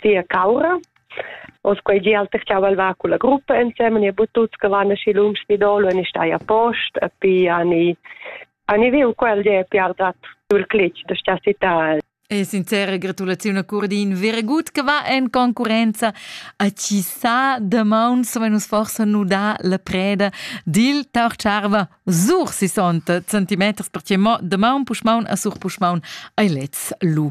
sia caura. Os quei gi alterchau al va culla gruppa ensemen e butut che van aschi lungs ni dolo e ni stai a post a pi a ni a ni viu quel ge piardat sul clic da sta città E sincera gratulaziun a Curdin Veregut che va en concurenza a chi sa da maun sove nus forsa nu da la preda dil Taucharva sur 60 centimeters per che mo da maun puschmaun a sur puschmaun ai lez lu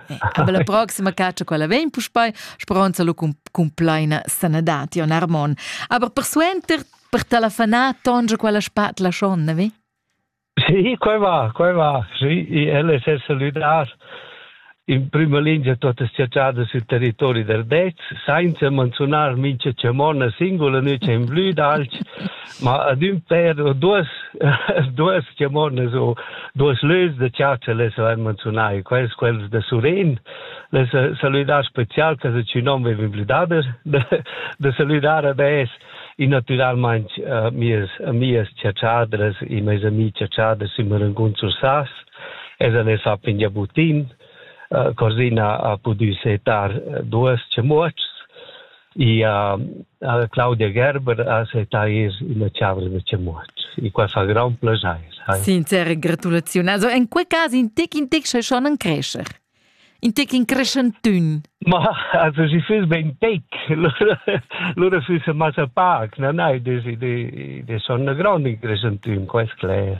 Aber la proxima caccia quella vegn puspei, speronza lu cun, cun pleina sanadad, Jon Armon. Aber persuenter per talafanar tonge quella spatla schon, vi? Sì, quei va, quei va. Sì, ella è saludar in prima linea tutte le città sul territorio del Dez, senza menzionare mince Cemona singula, noi c'è in blu d'alci, ma ad ün pêr o duos duos chamonas o duos lös da chatscha les avain menziunà e quels quels da Suren les salüdar special che sü nom veva implidader da, da salüdar ad es e natüralmaing uh, mias mias chatschadas e meis amih chatschadas in Marangun Sursas es a les ha pigna butin uh, Corsina ha pudü setar duos chamuotschs Ja Claudia Gerber ha setais ina chavla da chamuot. E qua fa grand plaschair. Sincere gratulaziun. Also en quei cas in tec in tec schon ein crescer. In tec in crescentun. Ma also si füss ben tec. Lura füss massa pac, na nei, des de de son grand in crescentun, quest cler.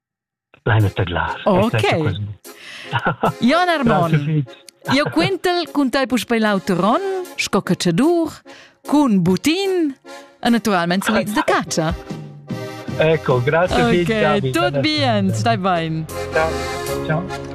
Leina tadlar. Ok. Jon Armon, io quentel cun tai puspei l'auteron, sco cacciadur, cun butin, e naturalmente sliz de caccia. Ecco, grazie okay, David. Tot bien, stai bein. Ciao. Ciao.